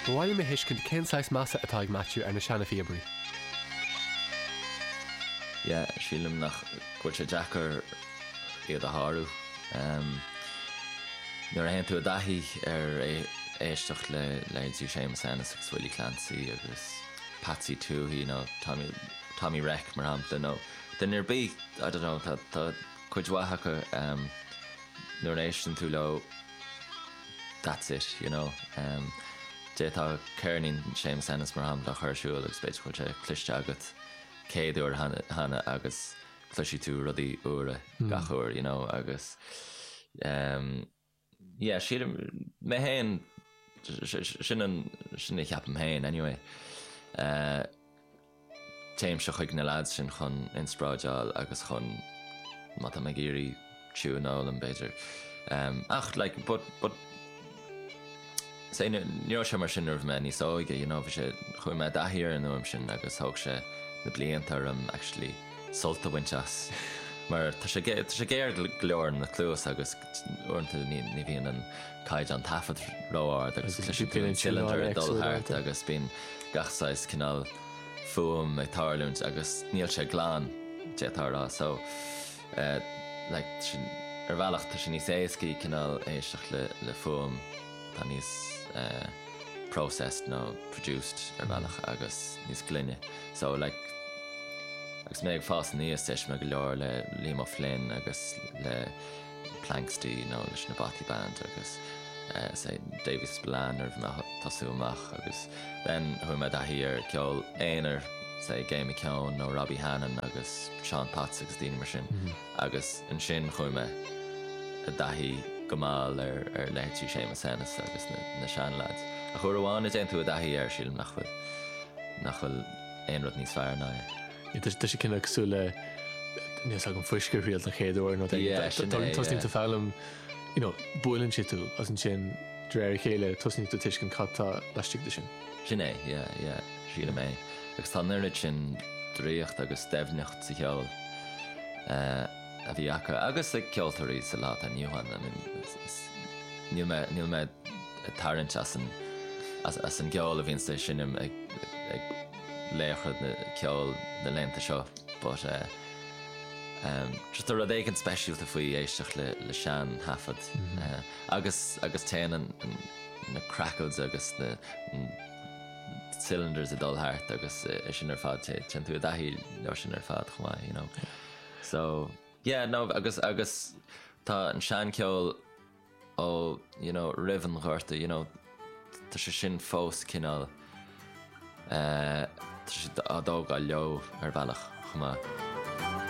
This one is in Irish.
Ba mhaith liom a thuiscint cén saghas measa atá ag Matthew ar na seana-phíobairí. Yeah, sílim nach, go bhfuil sé deacair iad a shárú. Em, nuair a théann tú i dtaithí ar éisteacht le leithéidí Séamus Ennis agus Willie Clancy agus Patsy Touhey, you know, Tommy, Tommy Reck, mar shampla, nó duine ar bith, I don't know, tá, tá cuid mhaith acu, em, nuair a éisteann tú leo, that's it, you know. D'fhéadfá ceirnín Seamus Ennis mar shampla a chur ar siúl agus b'fhéidir go bhfuil sé cloiste agat céad uair cheana agus cloisfidh tú rudaí úra gach uair, you know, agus yeah, sílim mé féin, sin a cheapaim féin anyway. Téimse chuig na leaids sin chun inspráideáil agus chun, má tá mé ag iarraidh tiún a fhoghlaim b'fhéidir. Ach like but but say ní raibh sé mar sin nuair a bhí mé níos óige you know bhí sé, chuaigh mé i dtaithí ar an fhuaim sin agus thóg sé na blianta orm actually sult a bhaint as mar tá sé géar go leor ar na cluasa agus Uaireanta ní bhíonn an caighdeán taifead ró-ard agus tá siad pinn an cylinder ag dul thart agus bíonn gach saghas cineál fuaim ag tarlúint agus níl sé glan, d'fhéadfá a rá. So, like, ar bhealach tá sé níos éascaí cineál éisteacht le fuaim atá níos processed nó produced ar bhealach agus níos glaine. So, like, agus mé ag fás aníos d'éist mé go leor le Liam Ó Floinn agus le. Planxty nó leis na Bothy Band agus say Davy Spillane nuair a bhí mé ag tosú amach agus then chuaigh mé i dtaithí ar ceol aonair, say Gay McKeon nó Robbie Hannan agus Seán Potts agus daoine mar sin agus ansin chuaigh mé i dtaithí go mall ar ar leithéidí Seamus Ennis agus na na sean lads. Ach uair amháin a dtéann tú i dtaithí air sílim nach bhfuil nach bhfuil aon rud níos fearr ná é. Tá sé cineál cosúil le níl a fhios agam fuisce a thriail don chéad uair nó tosnaíonn tú foghlaim, buaileann sé tú agus ansin de réir a chéile tosnaíonn tú tuiscint cad tá laistigh de sin. Sin é, yeah, sílim é. Agus tá an oiread sin draíocht agus doimhneacht sa cheol a bhí acu agus ag ceoltóirí sa lá atá inniu ann. I mean, níl mé, níl mé ag tarraingt as an, as an gceol a bhíonns á seinm ag, ag. laochra ceoil na laethanta seo but ehm just tá rud éigin speisialta faoi éisteacht le le sean thaifead agus agus téann an na crackles agus na cylinders ag dul thart agus é sin ar fad té téann tú i dtaithí leo sin ar fad chomh maith you know so yeah no agus agus tá an sean ceol ó you know roimh an Ghorta you know tá sé sin fós cineál eh tá siad á dtógáil leo ar bhealach chomh maith.